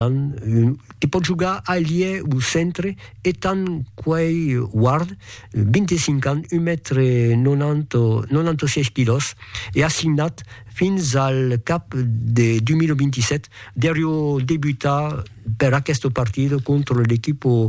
Te pòts jogar ailier o centre etant Quay Ward, 25 ans, un mètre 96 quilòs e assignat fins al cap de 2027, deriu debutar per aquesta partida contra l'equipa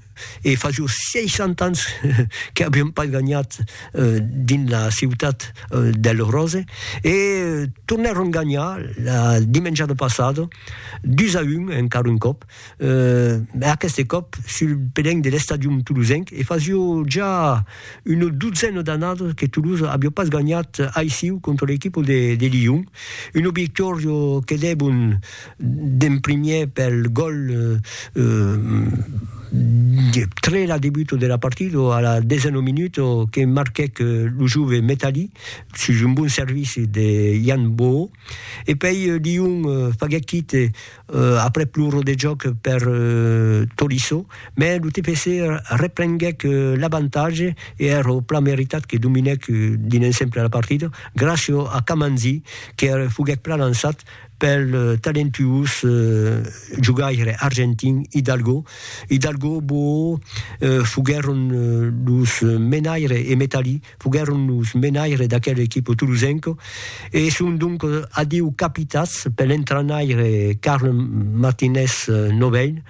E fa jos 60 ans que aviam pas ganhat dins la ciutat del Rose e tornèron ganhar la dimenjada passada 2 a 1 encara un còp, e aqueste còp sul pelenc de l'Estadium Toulousenc e fasiá ja una dotzena d'annadas que Toulouse aviá pas ganhat aissiu contra l'equipa de Lyon, un obiectòria que debon D'en primièr pel gòl de Trela, debuto de la partida, a la desena minuta, que marquèc lo jove Metali sus un bon servici de Yann Boho. E pei Lyon faguèc quite aprèp lo rodejòc per Tolisso, mès lo TFC reprenguèc l'avantatge e èra plan meritat que dominèc dins l'ensemble la partida, gràcia a Kamanzi que foguèc plan lançat pel talentuós jogaire argentin Hidalgo. Hidalgo Bo foguèron los menaires e Metalí foguèron los menaires d'aquel equipo tolosenco e son donc adieu capitats pel entrainaire Carl Martinez Novell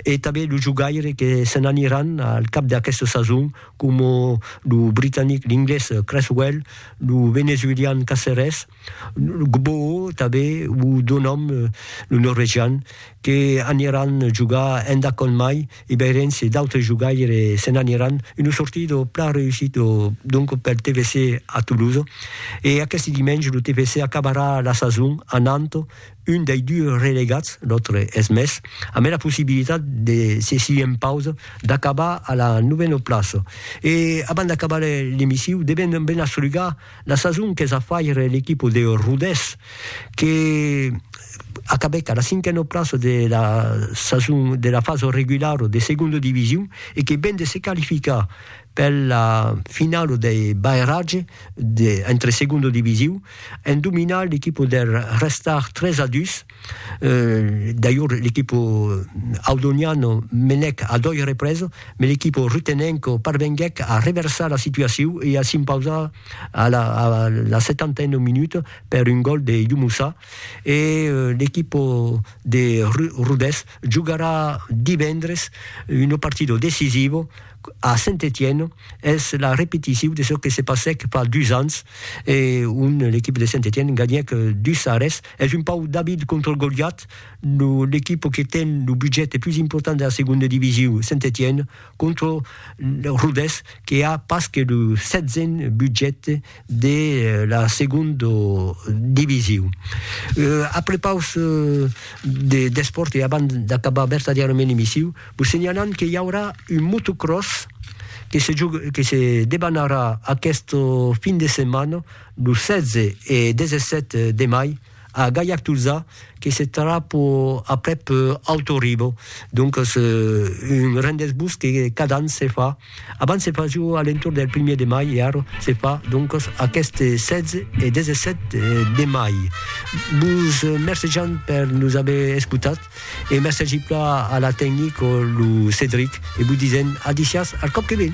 e tanben los jogaires que se n'aniràn al cap d'aquesta sason coma lo britanic, l'inglés Cresswell, lo venezuelian Caceres, Gboo tanben, o do nom lo norvegian, que aniran jogar enda Conn Mai, e veirens se d'autres jogaires se n'aniran, una sortida plan reussida donc pel TFC a Toulouse. E aqueste dimenge lo TFC acabarà la sason anant un dei dus relegats, l'autre es Metz, ambe la possibilitat, se s'i en pausa, d'acabar a la novena plaça. E abans d'acabar l'emissiu devem ben asrugar, La sason qu'es a faire l'equipa de Rodés, que acabèc a la cinquena plaça de la sason de la fasa regulara de segonda division e que ven de se qualificar per la finala dei barratge entre segonda division en dominar l'equipa der Restart 3 a 2. D'ailleurs, l'equipo audoniano menèc a doi represes, me l'equipo rutenenco parvenguèc a reversar la situaciu e a s'impausar a la setantena minuta per un gòl de Youmoussa e l'equipo de Rodés jogarà divendres una partida decisiva a Saint-Étienne, es la repeticiu de çò que se passèc fa dus ans, ont l'equipo de Saint-Étienne ganhèc dus a res Es un pauc David contra Goliat, lo l'equipa que ten lo budget e plus important de la segonda divisiu, Saint-Étienne, contra Rodés que a pas que lo setzen budget de la segonda divisiu. A prepaus d'espòrt e abans d'acabar vertadièrament l'emissiu, vos senhalam que i aurà un motocròs que se debanarà aquesta fin de setmana los 16 e 17 de mai a Gaillac-Tolzà que se tarà pro aprèp Alto Rivo, doncas un rendez-vous que cada an se fa, abans se fasiu a l'entorn del primièr de mai e ara se fa doncas aqueste 16 e 17 de mai. Vos mercejam per nos aver escotat e mercegi plan a la tecnic o lo Cedric e vos disèm a disiás al còp que ven.